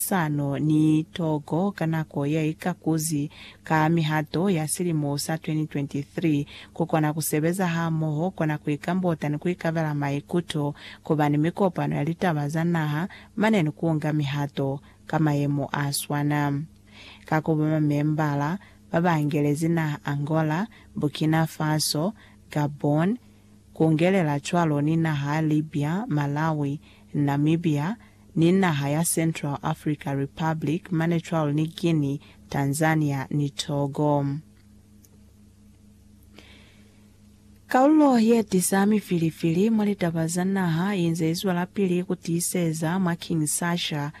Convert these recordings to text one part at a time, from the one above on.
Sano ni Togo ka nako ya ikakuzi ka mihato ya silimo sa 2023 ku kona ku sebeza hamoho, kona ku ikambota ni ku ikabela maikuto, ku ba ni mikopano ya litaba za naha mane ni ku nga mihato ka mayemo a swana ka ku ba mamembala ba ba angelezi naha Angola, Burkina Faso, Gabon, kungelela cwalo ni naha ya Libya, Malawi, Namibia, ni naha ya Central Africa Republic mane cwalo ni Guinea, Tanzania ni Togo. Kalulo ye tisa mifilifili mwa litaba za naha inze izwelapili kutiiseza mwa Kinshasa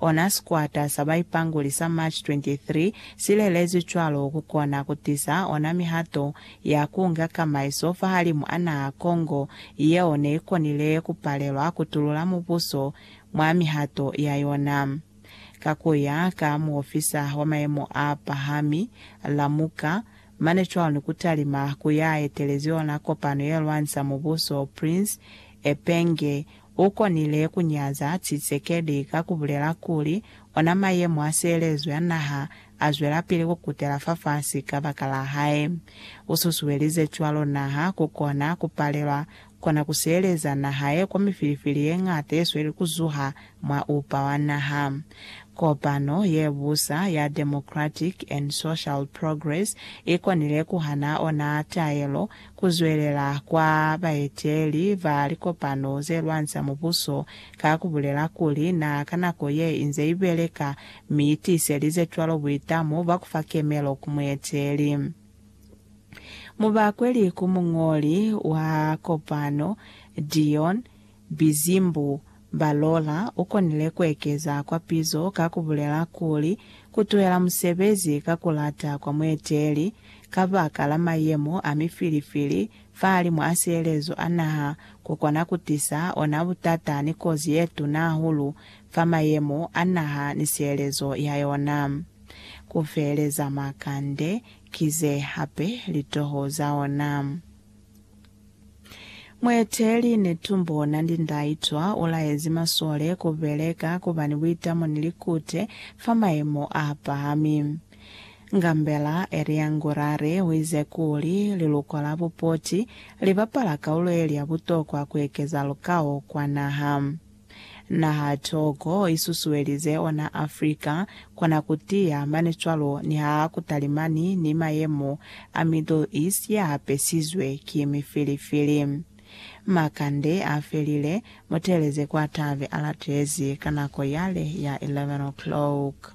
Ona sikwata sa baipanguli sa March 23 si lelezwi cwalo ku kona ku tiza ona mihato ya ku nga kamaiso fahalimu a naha Congo yeo ne i konile ku palelwa ku tulula mubuso mwa mihato ya yona. Ka ku ya ka muofisa wa mayemo a pahami, Lamuka, mane cwalo ni ku talima ku ya etelezi yona kopano ye lwanisa mubuso Prince Epenge ukonile kunyaza Tshisekedi ka kubulela kuli ona mayemo a sielezo ya naha azwelapili kukutela fafasi kabakala hae. Ususuelize cwalo naha kukona kupalelwa kona kusieleza nahae kwa mifilifili yeñata yesweli kuzuha mwa upa wa naha. Kopano yebusa ya Democratic and Social Progress ikonile kuhana ona taelo Ku zwelela kwa baeteli ba likopano ze lwanisa mubuso ka ku bulela kuli na ka nako ye inze i beleka mi i tiiselize cwalo buitamo bwa ku fa kemelo ku mueteli. Mubakweli ku muñoli wa kopano, Dion, Bizimbu, Balola ukonile kuekeza kwa pizo ka kubulela kuli, kutuhela musebezi ka kulata kwa mueteli kabaka la mayemo a mifilifili fahalimu a sielezo a naha kukona kutisa ona butata ni kozi yetuna hahulu fa mayemo a naha ni sielezo ya yona. Kufeeleza makande kize hape litoho za ona. Mueteeli Netumbo Nandi-Ndaitwah ulaezi masole kubeleka kuba ni buitamo ni likute fa mayemo apahami. Ngambela Elia Ngurare uize kuli liluko la Bupoti libapala kaulo yeli ya butokwa kuekeza lukao kwa naha. Naha toko i susuelize ona Africa kona ku tiya mane cwalo niha ku talimani ni mayemo a Middle East ya hapesizwe ki mifilifili. Makande a felile, Mutelezi kwa tabe a latezi ka nako yale ya 11 o'clock.